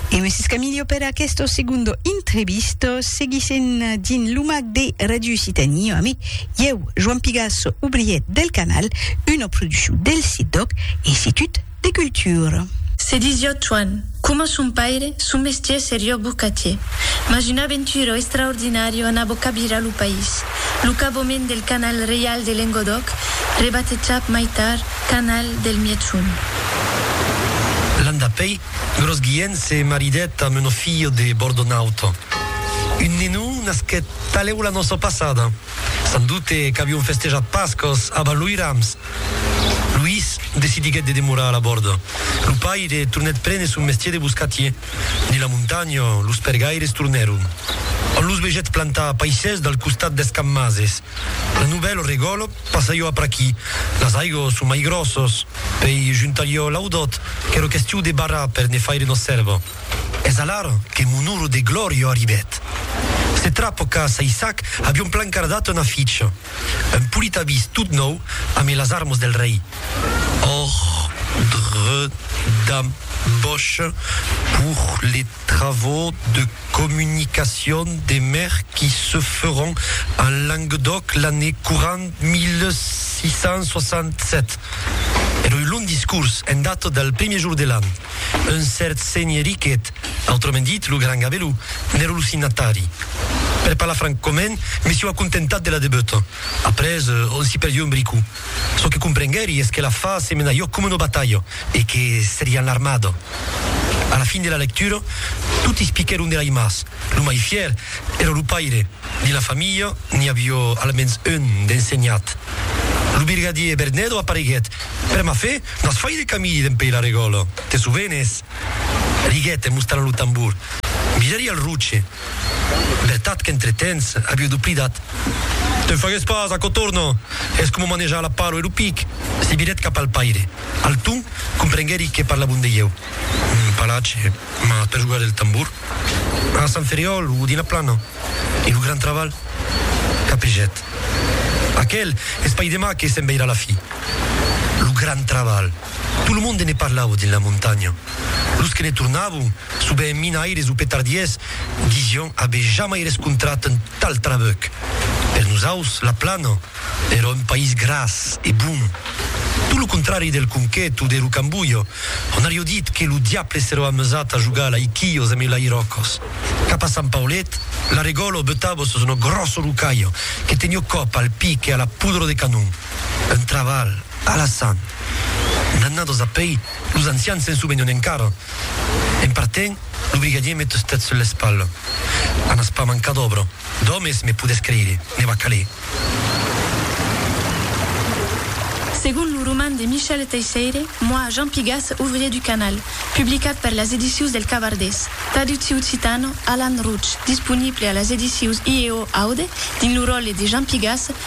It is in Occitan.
E un siscamilio per aquesto segundo intrevisto. Seguissem dins lo mag de Radio Occitanie ami. Ieu, Joan Pigasso, obrièr del canal, una produccion del CIDOC, Institut de Cultura. Se disiot Joan, coma son paire, son mestier serió bocatier. Mas un aventuro extraordinario anabó cabirar lo país. Lo cabomènt del canal reial de Lengodòc, rebatejat mai tard, Canal del Mièchon. L'an dapèi, Grosguièn se maridèt amb un offiò de Bordonauta. Un nenon nasquèt talèu la noça passada. San doute qu'avion festejat Pascas abans loi rams. Luís decidiguèt de demorar a la Bòrda. Lo paire tornèt prene son mestier de boscatier. Dins la montanha, los pergaires tornèron. An los vegèt plantar paisses dal costat d'Escammases. Un novèl regòl passa jo apr'aquí. Las aigos son mai gròssos. Pei juntar jo l'audòt, qu'èro questiu de barrar per ne faire nos sèrva. Es alar que mon ur de glòria arribèt. Se trapo qu'a Saissac avion plan cardat una ficha. Un polit avís tot nòu amé las armos del rei. Òrdre d'ambòcha pour le. travaux de communication des mers qui se feront en Languedoc l'année courante 1667. Era un long discurs en data del premier jour de l'an. Un cèrt senhè Riquet, autrament dit lo Gran Gabelou, n'èra lo signatari. Per parlar francament, me siu acontentat de la debuta. Après, on s'i perdió un bricou. Çò que comprenguèri es que la fa se mena jo coma una batalha e que serián l'armada. A la fin de la lectura, totis piquèron de l'aimaç. Lo mai fièr èra lo paire. Dins la familha n'i avió almens un d'ensenhat. Lo birgadier Bernedo apareguèt. Per ma fe, n'as fai de camidi dempèi la regòla! Te sovenes? Riguèt en mostrant lo tambor. Mirèri al roche. Vertat qu'entretemps aviu doplidat. Te'n fagues pas, aquò torna! Es coma manejar la palo e lo pic. Se virèt cap al paire. Alton comprenguèri que parlavon de ieu. Un palatge, mas per jogar del tambor. A Sant Ferriòl o dins la plana. E lo gran travalh? Capegèt. Aquel, es pas demà que se'n veirà la fi. Lo gran travalh! Tot lo monde ne parlava dins la montanha. Los que ne tornavan, sovent minaires o petardiers, disián aver jamai rescontrat un tal trabuc. Per nosaus, la Plana èra un país gras e bon. Tot lo contrari del Conquet o de Rocambolha, ont aviá dit que lo diable s'èra amusat a jogar a l'aiquilhos amb el'airòcos. Cap a Sant Paulet, la regòla butava sus una gròssa rocalha que teniá còp al pic e a la podra de canon. Un trabalh alassant. D'annados a pei, los ancians se'n sovenon encara. En partent, lo brigadier me tustèt sul l'espalha. A n'as pas mancar d'òbra, d'òmes, me podètz creire, ne va caler. Segon lo roman de Michel Teixeire, Moi, Jean Pigas, ouvrier du canal, publicat per las edicius del Cavardés, traductiu occitano, Alan Routch, disponible a las edicius IEO Aude dins lo ròtle de Jean Pigas,